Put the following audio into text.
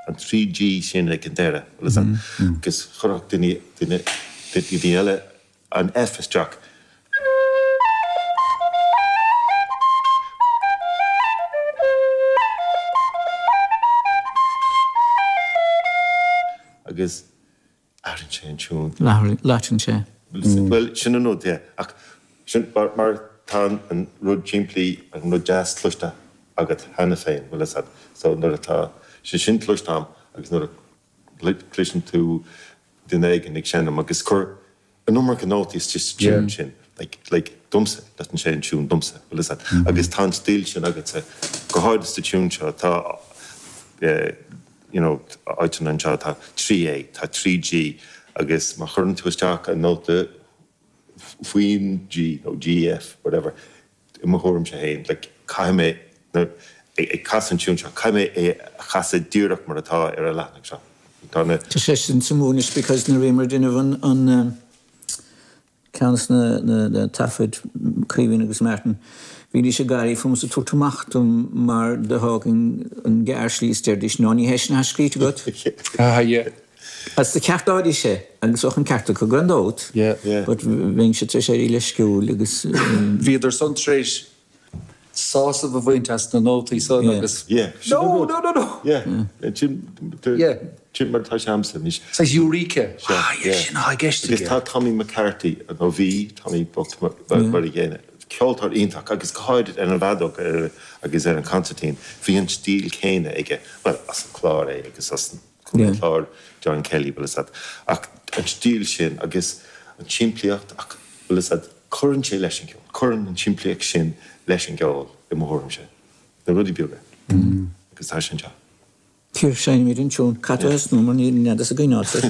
an trí G sin ag an deireadh agus agus chuirfeadh duine duine duine eile an F isteach. agus. Labhrann sé an tiún. Labhrann sé. Bhuel, sin an rud é. Ach sin mar tá an rud simplí, an rud deas cloiste agat cheana féin, bhuel, is ea. So nuair atá sé sin cloiste a'm agus nuair a chloiseann tú duine éigin ag seinm agus ag cur, an iomarca nótaí sa cheann sin, like, domsa, loiteann sé an tiún domsa, bhuel, is ea, agus tá an stíl sin agatsa, go háirithe sa tiún seo, tá, you know, áiteanna anseo, tá trí A, tá trí G, agus má chuireann tú isteach an nóta faoin G, nó G, F, whatever, I mo thuairimse féin, caithfidh mé, nuair, ag casadh an tiún seo, caithfidh mé é a chasadh díreach mar atá ar an leathanach seo. Tá na. Tá sé sin sa Mhumhain is because nuair a bhí muid ag déanamh an, an eh, ceann de na, na taifid, Caoimhín agus Martin, bhídís ag gáirí fúm is ag tabhairt amach dom mar do thógainn an gearrshlí is deiridís, no, ní hé sin atá scríte agat. Ah, yeah. Á, seo, ceartaígí é, agus bheadh an ceart acu gan dabht, but bhíos-sa tar éis éirí leisciúil agus. Bhíodar san tar éis sásamh a bhaint as na nótaí san agus. Yeah, sin an rud. No, no, no, no. Yeah, sin, yeah, sin mar atá sé a'msa anois. Saghas Eureka. Ah, yeah, sin atá i gceist aige. Agus tá Tommy McCarthy, nó bhí Tommy bocht mar an gcéanna, ceoltóir iontach agus go háirid ar an bhfeadóg agus ar an concertín, bhí an stíl chéanna aige, bhuel as an Chlár é agus as an. an Chláir, John Kelly, bhuel, is ea, ach an stíl sin agus an tsimplíocht, ach, bhuel, is ea, cuireann sé leis an gceol, cuireann an tsimplíocht sin leis an gceol, i mo thuairimse, na rudaí beaga, agus tá sé anseo. Seinneamar an tiún Cat Ó hEasnamh mar níl an nead as a gcoinneáil sa.